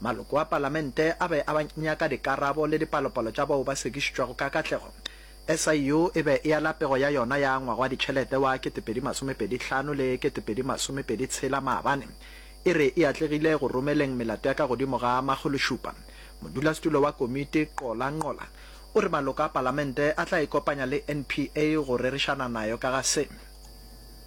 Maloko a Palamente a be a nyaka dikarabo le dipalopalo tša bao ba sekišitšwego ka katlego. SIU e be e ala pego ya yona ya ngwaga wa ditšhelete wa 2025 le 2026 maabane, e re e atlegile go romeleng melato ya ka godimo ga makgološupa. Modulasetulo wa komiti, Qola Nqola, o re maloko a Palamente a tla ikopanya le NPA go rerišana nayo ka ga se.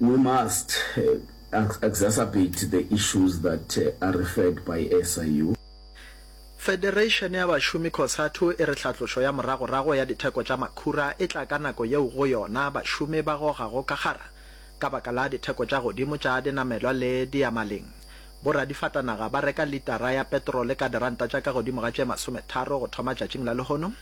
We must exacerbate the issues that are referred by SIU. Federation ya bašomi Cosatu e re hlatlošo ya moragorago ya ditheko tša makhura e tla ka nako yeo go yona bašomi ba gogago ka kgara ka baka la ditheko tša godimo tša dinamelwa le diyamaleng. Boradifatanaga ba reka litara ya petrole ka diranta tša ka godimo ga tše masometharo go thoma tšatšing la lehono.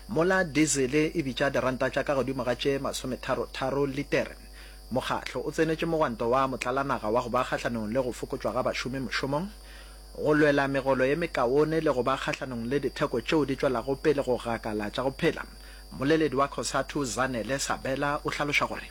Mola dizele e bitša diranta tša ka godimo ga tše masometharo-tharo litere, mokgatlo o tsenetše mogwanto wa motlalanaga wa go ba kgahlanong le go fokotšwa ga bašomi mošomong, go lwela megolo ye mekaone le go ba kgahlanong le ditheko tšeo di tšwelago pele go gakala tša go phela. Mmoleledi wa Cosatu, Zanele Sabela, o hlaloša gore.